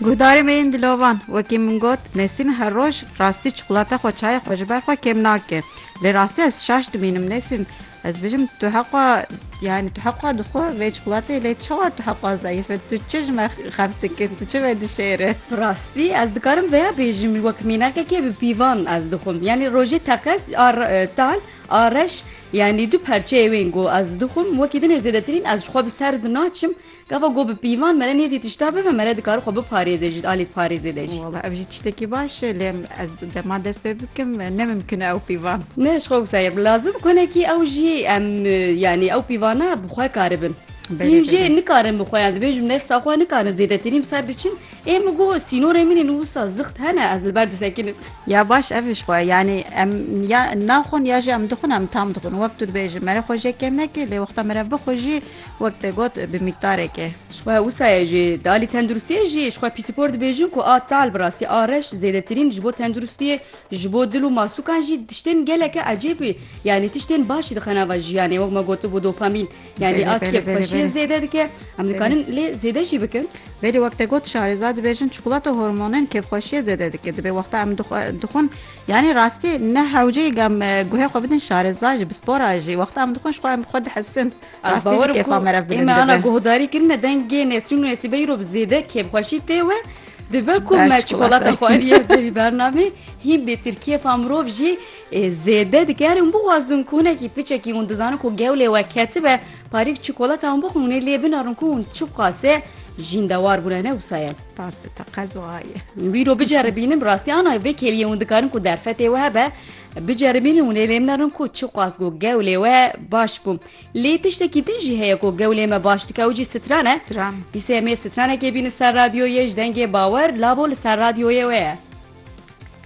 Guhdarên me yên dilovan wekî min got Nesîn her roj rastî çikolate xwe çayê xwe ji ber xwe kêm nake lê rastî ez şaş dimînim Nesîn ez bijim tu heqwa yani tu heqwa dixwe vê çikolateyê lê çawa tu heqwa zayîf e tu çi ji me xeft dikin tu çi me dişêre Rastî ez dikarim vêya bêjim wek mînakekê bi pîvan ez dixwim yanî rojê teqez a tal a reş yanî du perçeyê wên ku ez dixwim wekî din ê zêdetirîn ez ji xwe bi ser dinaçim Gava got bi pîvan mere nêzî tişta bibe mere dikare xwe biparêze ji alî parêzê de jî. Wala ev jî tiştekî baş e lê ez dema dest pê bikim ne mimkun e ew pîvan. Ne ji xwe wisa ye lazim konekî ew jî em yanî ew pîvana bi xwe karibin. Hîn jê nikarin bi xwe yan divê ji nefsa xwe nikarin zêdetirî bi ser diçin. Ê min got sînorên min ên wisa zixt hene ez li ber disekinim. Ya baş ev ji xwe yanî em ya naxwin ya jî em dixwin em tam dixwin wek tu dibêjin mere xwe jê kêm nekê lê wexta mere bixwe jî Wek te got bi mîkdarek e. Ji xwe wisa ye jî di alî tenduristiyê jî ji xwe pîsîpor dibêjin ku a tal bi rastî a reş zêdetirîn ji bo tenduristiyê ji bo dil û masûkan jî tiştên geleke ecêbî yanî tiştên baş jî dixe nava jiyanê wek me gotibû dopamîn yanî a kêf xweşiyê zêde dike em dikarin lê zêde jî bikin. Belê wek te got şarêza dibêjin çikolata hormonên kêfxweşiyê zêde dike dibê wexta em dixwin yanî rastî ne hewceyî guhê xwe bidin şarêza jî bi spora jî wexta em dixwin ji xwe em xwe dihesin. Rastî jî kêfa me re bilind dibe. Ême ana guhdarî kirine dengê Nesrîn û Nesîbeyî ro bi zêde kêfxweşî tê we. Dibe ku me çikolata xwariye berî bernamê hîn bêtir kêfa mirov jî zêde dike erin bixwazin ku hinekî piçekî hûn dizanin ku gewlê we ketibe parîk çikolata hûn bixwin hûnê lê binarin ku hûn çi qasê jîndewar bûne ne wisa ye rastî te qezoaye wî ro biceribînin rastî ana vê kêliyê hûn dikarin ku derfetê we hebe Biceribînin û lê lêm nerin ku çi qas ku gewlê we baş bû. Lê tiştekî din jî heye ku gewlê me baş dike ew jî stran e. Stran. Dîsa em ê stranekê bînin ser radyoyê ji dengê bawer lavo li ser radyoyê we ye.